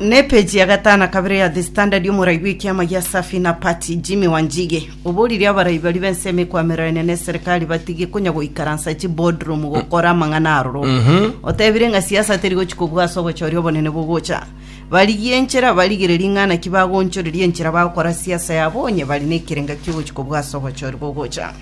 Nepeji ya gatano na kabere ya The Standard y'omorai bw'ekiama gia Safi na Party Jimmy Wanjigi oborire abarai baria b'ense emekwamererania n'eserikari batige konya goikaransa chiboardroom gokora amang'ana aroro. Otebire ng'a siasa teri gochi kobua ase ogochoria obonene bogocha. Barigie enchera, barigererie ng'a naki bagoonchoreria enchera bagokora siasa yabo onye bari nekerenga kiogochi kobua ase ogochoria bogocha.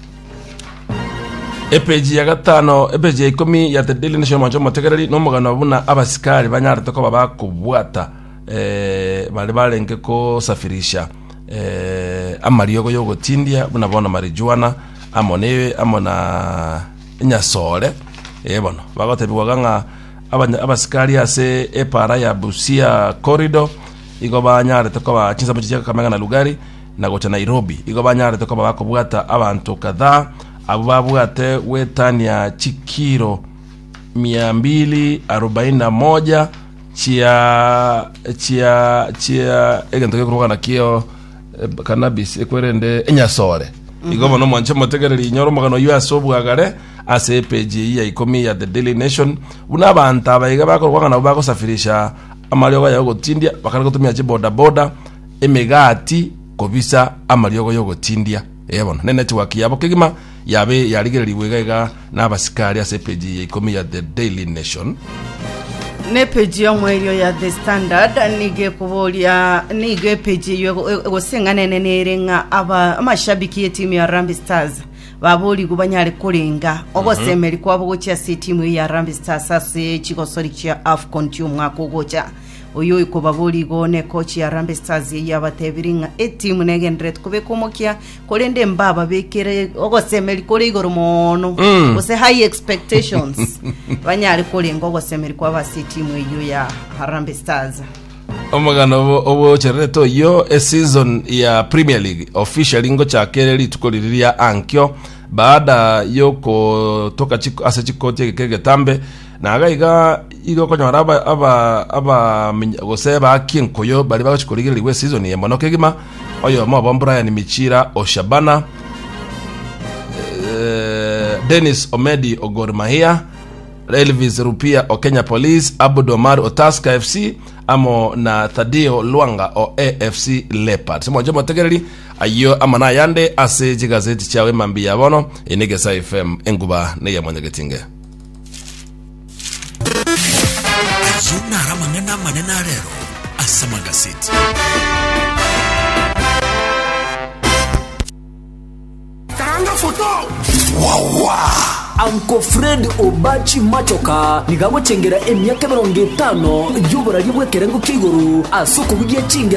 Epeji ya gatano epeji ya ikomi ya The Daily Nation omoancho omotegereri na omogano buna abasikari banyarete koba bakobwata eh, bare barenge kosafirisha eh, amariogo y'ogotindia buna bono marijuana amo ne amo na enyasore eh, bono bagotebigwaga ng'a abanya- abasikari ase epara ya Busia corridor igo banyarete koba chinsamu chichia Kakamega na Lugari na gocha Nairobi, igo banyarete koba bakobwata abanto kadhaa abwo babwate gwetania chikiiro mia mbili arobaini na moja chia chia chia egento gekorokana kio eh, cannabis ekwerende enyasore igo bono mwanche motegereri inyora omogano oyio ase obwagare ase epeji eyi ya ikomi ya the daily nation buna abanto abaiga bakorokana nabo bagosafirisha amariogo yago gotindia bakare gotumia chibodaboda emegati kobisa amariogo y'ogotindia. Ee bono, nenetiwaki yabo kegima yabe yarigererigwe iga iga nabasikari ase epeji ya ikomi ya The Daily Nation. Na epeji y'omoerio ya The Standard nigo ekoboria nigo epeji eyio ego- ego- egoseng'ana enene ere ng'a aba amashabiki y'etimu ya Harambee Stars baborigwe banyare korenga ogosemeri kwabo gochia ase etimu eyio ya Harambee Stars ase chigosori chia AFCON chi'omwaka ogocha Oyoiko baboria igo nekochi ya Harambee Stars eyio abatebirie ng'a etimu negendererete kobeka omokia korende mbababekere ogosemeri kore igoro moono Mm. gose high expectations banyare korenga ogosemeri kwabo ase etimu eyio ya Harambee Stars omogano obo- obochererete oyio eseason ya premier league officially ngochaka ere rituko riri ria ankio baada yokotoka chiko- ase chikoti egeka egetambe Na gaiga igo okonyora abamenyi gose abaaki enkuyu baria bagochia korigererigwa esizoni eye mono kegima. Oyomo obo Brian Michira o Shabana, Dennis Omedi o Gor Mahia, Elvis Rupia o Kenya Police, Abud Omar o Tusker FC amo na Thadio Lwanga o AFC Leopards. Moche motegereri ayio amo na ayande ase chigazeti chiao emambia ya bono. Eye ne Egesae FM, enguba neya Mwanyagetinge. Ayio naro amang'ana amanene a rero ase amagaseti. Karanga foto. Uncle Fred Obachi Machoka niga agochengera emiaka emerongo etano y'oboraria bw'ekerengo kia igoro ase okobugia chingero